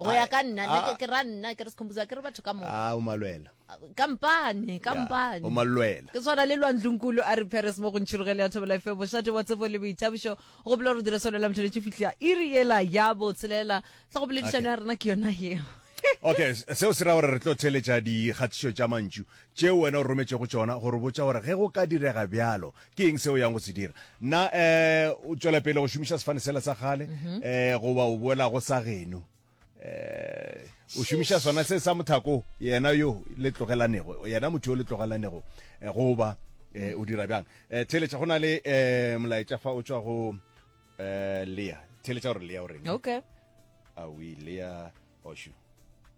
go ya ka nna nna ke- ke ra nna ke re sekhomposa ke re batho ka moka a o malwela kampane Ya, kampane o malwela ke tshwana le lwantlongkulu a re paris mo go ntšhirogele ya thobela fe bošate wa tsebo le boithabišo go bolela gore dire solo la motholetše fihla iri ela ya botshelela tla go boledišano ya rena ke yona yeo okay s- seo se ra gore re tlo theletša dikgatišo tša mantšu tšeo wena o rometšego tšona go re botša gore ge go ka direga bjalo ke eng seo yang go se dira na um o tšwela pele go šomiša sefane sela sa kgale um goba o boelago sa geno um o šomiša sona se sa mothako yena yo le tlogelanego yena motho yo le tlogelanego eh, goba eh, o dira bjang eh, theletša go na le um molaetša fa o tswa go um lea theletša gore lea o reng okay a o ile ya oshu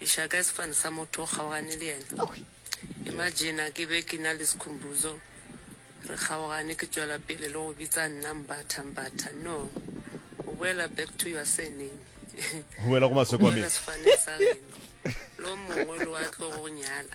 E ša kae sefane sa motho o kgaogane le yena? Imagina ke be ke na le Sikhumbuzo, re kgaogane, ke tšwela pele le go bitsa nna Mbatha, Mbatha. No, o boela back to your surname. O boela go maswe kwa me. O boela sefaneng sa geno. Lo mongwe lo a tlo go nyala.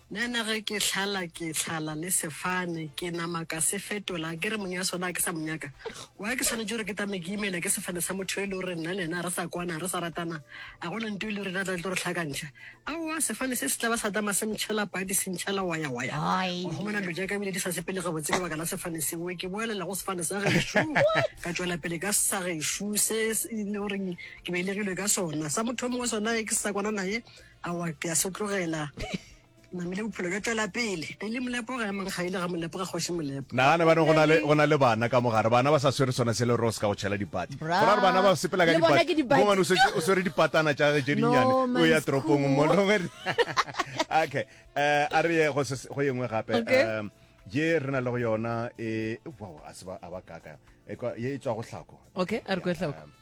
Nana ge ke hlala ke hlala le sefane ke nama ka se fetola ke re mong ya sona a ke sa mo nyaka wa ke swanetše gore ke tame ke imela ke sefane sa motho e le gore nna le yena a re sa kwana a re sa ratana a gona nto e le rena tla tlo re hlakantšha aowa sefane se se tla ba sa tama se ntšhela padi se ntšhela waya waya wa gomona dilo jaaka ebile di sa sepele gabotse ka baka la sefane seo ke boelela go sefane sa gešo ka tšwela pele ka sa gešo se e le goreng ke beilegilwe ka sona sa motho mongwe sona e ke se sa kwana naye Aowa, ke a se tlogela. Ke namile bophelo bja tšwela pele. Eli Molepo ga ya mang ga ile ga Molepo ga Kgoši Molepo. Nagana ba re go na le bana ka mo gare, bana ba sa swere sona se le rose ka go tšhela dipati. Go ra gore bana ba sepela ka dipati. Mongwane o swere dipatana tša gage tše dinnyane, o ya toropong mo le gore. Okay, a re ye go ye nngwe gape. Ye re na le go yona e, wow, a se ba a ba kaka. Ye e tswa go hlako. Okay, a re kwe hlako.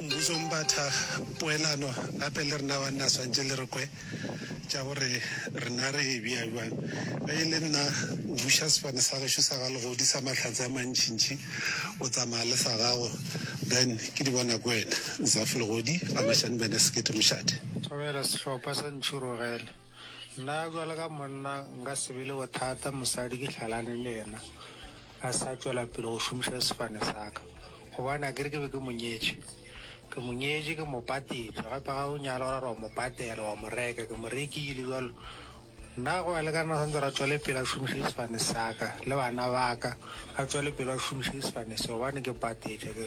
Mbuso Mbatha, Poelano gape le rena banna swantše le re kwe tša gore rena re e bea bjang. Ge e le nna, buša sefane sa gešo sa ga Legodi sa mahlatse a mantšintši, o tsamaya le sa gago, then ke di bona kwena. Zafi Legodi, Ramashani Bene Sekete Mošate. Thobela sehlopha sa Ntšhurogele. Nna bjalo ka monna nka se be le bothata mosadi ke hlalane le yena a sa tšwela pele go šomiša sefane sa ka gobane a kere ke be ke mo nyetše ke mo nyetše ke mo patile gape ga o nyala o ra re wa mo patela wa mo reka ke mo rekile bjalo nna go ya le ka nna santse ra tswele pele a šomiše sefane sa ka le bana ba ka a tswele pele a šomiše sefane se gobane ke patile ke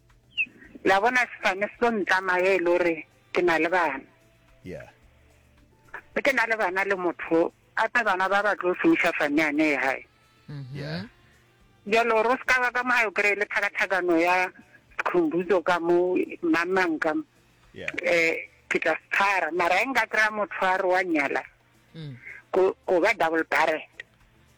La bona sefane se tlo ntlama ge e le gore ke na le bana. Yeah. Ge ke na le bana le motho gape bana ba ba tlo šomiša fane yane ya gae. Mm-hmm. Yeah. Jalo ro se ka ba ka mo ga o kry-e le thakathakano ya sekhumbuzo ka mo mamang ka mo. Yeah. Eh, ke tla se tshwara. Mara e nka kry-a motho a re wa nyala. Mm. Go ba double barrel.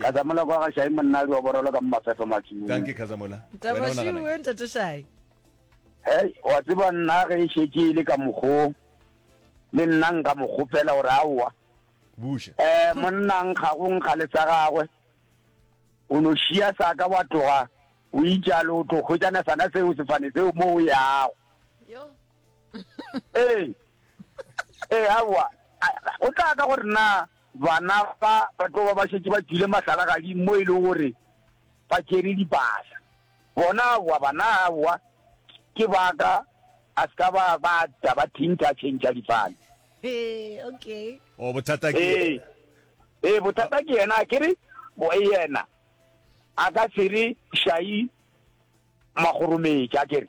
Khazamola kwa ga Shai monnadi wa borolo ka mo Mafefo Matsung. Dankie Khazamola. Taba šuu we ntate Shai. Hei, wa tseba nna ge e šetše e le ka mokgo le nna nka mo kgopela gore aowa. Buša. Eh, monna nkga go nkga le sa gagwe. O no šia sa ka wa tloga o itšalo o tlo hwetšana sana seo sefane seo mo o yago. Yo. Ee. Ee, aowa. O tla ka gore na Bana ba ba tlo ba ba šetše ba tšwile mahlalagading mo e lego gore ba tšere dipasa. Bona aowa, bana aowa, ke ba ka a se ka ba ba ta ba thintha a tšhentšha difane. Ee, okay. O bothata ke Ee, yena. ee, bothata ke yena, ke re bo- yena a ka se re šai magorometša, ke re.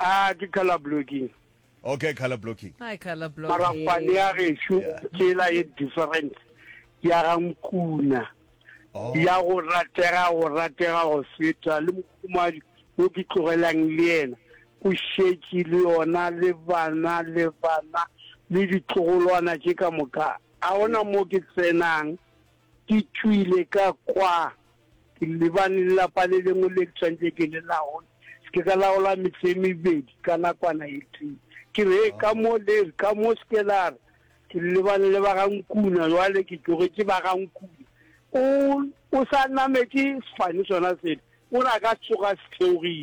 A ke color blocking. Okay, color blocking. Hi, color blocking. Mara ngwane ya gesho tsela e different ya ga nkuna. Oh. Ya go ratega go ratega go feta le mokumadi o ke tlogelang le yena. O šetše le yona le bana le bana le ditlogolwana tše ka moka. A ona mo ke tsenang ke tšwile ka kwa Ke lebane le lapa le lengwe le ke tshwanetse ke le laole. Se ke ka laola metse e mebedi ka nakwana e tee. Ke re, Hei, ka mo le re, ka mo se ke la re, Ke lebane le ba ga Nkuna, bjale ke tlogetše ba ga Nkuna. O, o sa nametše sefane sona sele, o re a ka tsoga a se theogile.